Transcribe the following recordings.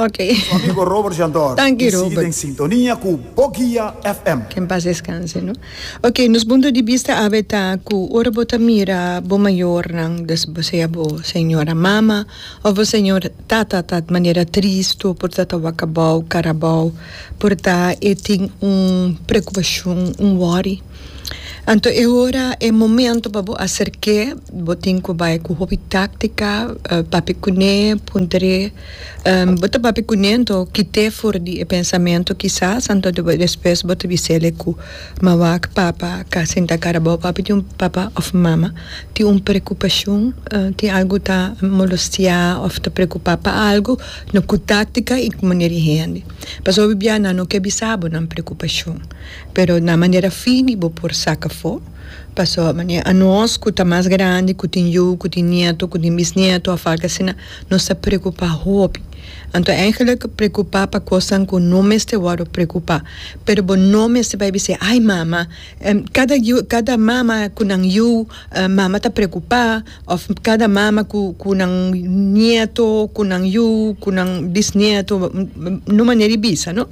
Su amigo Robert Jandor y sigui den sintonia cu Boguia FM. Que en paz descanse no. Ok nos punto di bista awe ta cu ora bo ta mira bo mayornan sea bo señora mama of bo señor tata ta manera tristo por ta ta wakabao carabao por ta e tin un preocupacion un worry. Anto e hora, e momento pa bo aserk'é. Bo tin ku bai ku hopi táktika, papia kuné, puntar'é. Bo ta papia kuné anto kit'é for di e pensamentu kisas, anto despues bo ta bise'é ku mawak papa ka sinta kara bo, papi tin un papa òf mama tin un prekupashon, tin algu ta molostiá òf ta prekupá pa algu, no ku táktika i ku manera di hende. Pasobra bia nan no ke bisa bo nan prekupashon. pero na manera fini bo por saca afo, pasobra manera anos cu ta mas grandi, cu tin yu, cu tin nieto, cu tin bisnieto of algo asina, nos ta preocupa hopi. Anto eigenlijk preocupa pa cosnan cu no mester worde preocupa, pero bo no mester bay bisey, ay mama, cada yu, cada mama cu nan yu, mama ta preocupa, of cada mama cu, cu nan nieto, cu nan yu, cu nan bisnieto, no manera di bisa no.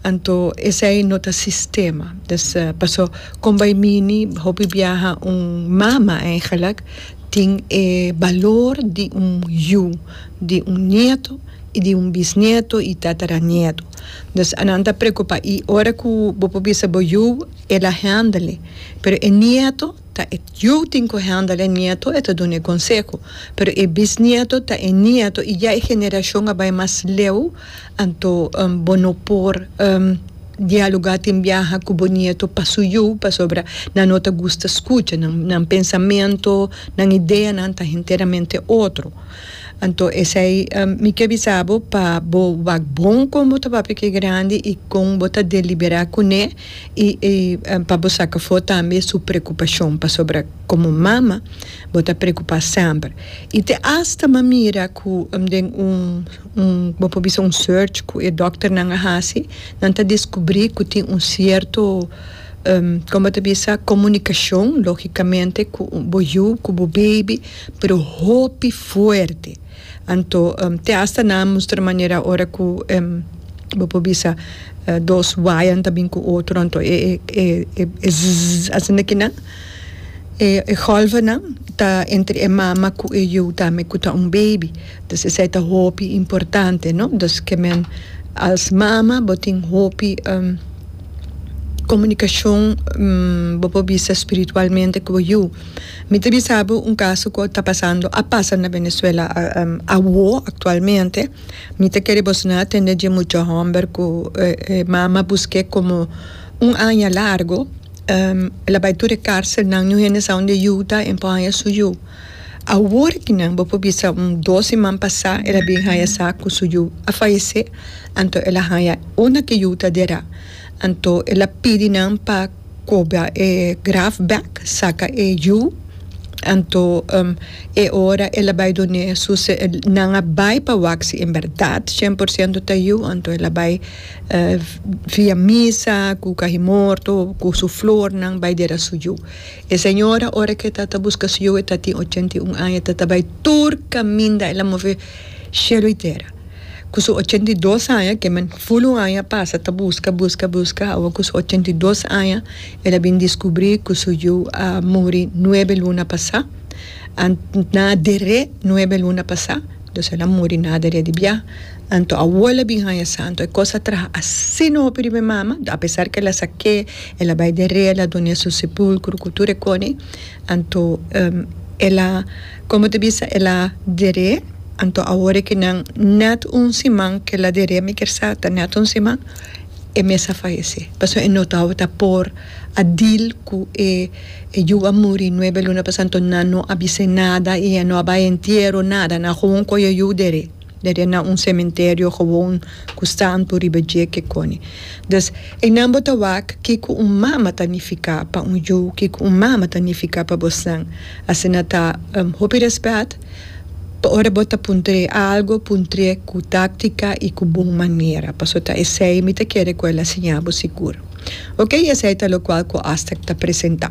Anto esei no ta sistema. Dus paso kon bai mini hopi biaha un mama eigenlijk tin e balor di un yu, di un nieto i di un bisnieto i tataranieto. Dus anan ta preocupa i ora ku bo por bisa bo yu el a handel e pero e nieto ta e yu tin ku handel e nieto e ta duna e konseho pero e bisnieto ta e nieto i ya e generashon a bai mas leu. Anto bo no por dialogá tin biaha ku bo nieto pa su yu, pasobra nan no ta gusta skucha. Nan pensamentu, nan ideanan ta henteramente otro. Anto esei mi ke bisa bo pa bo wak bon kon bo ta papia ku e grandi i kon bo ta deliberá kuné i pa bo saka afó tambe su prekupashon, pasobra komo mama bo ta prekupá semper. I te asta m'a mira ku den un. Bo por bisa un search cu e dokternan a haci, nan ta descubri cu tin un cierto, como bo ta bisa, comunicacion, logicamente, cu bo yu, cu bo baby, pero hopi fuerte. Anto, te hasta nan a mustra manera ora cu bo por bisa dos wayanan ta bin cu otro, anto e zzzzz asina kinan, e golfnan ta entre e mama cu e yu tambe cu ta un baby. Dus esei ta hopi importante no dus ke men als mama bo tin hopi komunikashon bo por bisa spiritualmente ku bo yu mi ta bisa bo un kaso ku ta pasando a pasa na Venezuela awo aktualmente mi ta kere bo sina atende dje mucha hòmber ku e mama busk'é komo un aña largu el a bai tur e karselnan niun hende sa unda e yu ta en por haña su yu. Awor di nan bo por bisa un dos siman pasá el a bin haya sa ku su yu a fayesé, anto el a haya unda ki yu ta derá. Anto el a pidi nan pa kobra e graf bèk, saka e yu. Anto e ora el a bai done su se nan a bai pa wak si en bèrdat shen por siento ta yu, anto el a bai via misa ku kahimorto ku su flornan bai dera su yu. E señora ora ke ta ta buska su yu e ta tin ochenta i un aña ta ta bai tur kaminda el a move shelu i tera. Ku su ochenta i dos aña ke men ful un aña a pasa ta buska buska buska awa ku su ochenta i dos aña el a bin diskubri ku su yu a muri nuebe luna pasa na dere nuebe luna pasa entonces el a muri na dere di biaha. Anto Awola bin haña santo. E kos a traha asina hopi riba e mama, a pesar ke el a sa ke, el a bai derea, el a duna su sepulkro ku tur e kone. Anto el a, komo ta bisa, el a dere, anto awor ke nan nèt un siman ke el a dere, mi ker sa ta nèt un siman, e mes a fayesé, pasobra e no tabata por a dil ku e yu a muri nuebe luna pas, anto nan no a bis'é nada i e no a bai e entiero, nada, nan gewoon koyo yu dere. Dede na un sementerio gewoon ku santu riba dje ke koni. Dus, einan bo ta wak kiko un mama ta nifiká pa un yu, kiko un mama ta nifiká pa bosnan. Asina ta hopi rèspèt pa ora bo ta puntr'é algu, puntr'é ku táktika i ku bon manera, paso ta esei mi ta kere ku el a siña bo sigur. Oke, i esei ta lokual ku Aztèk ta presentá.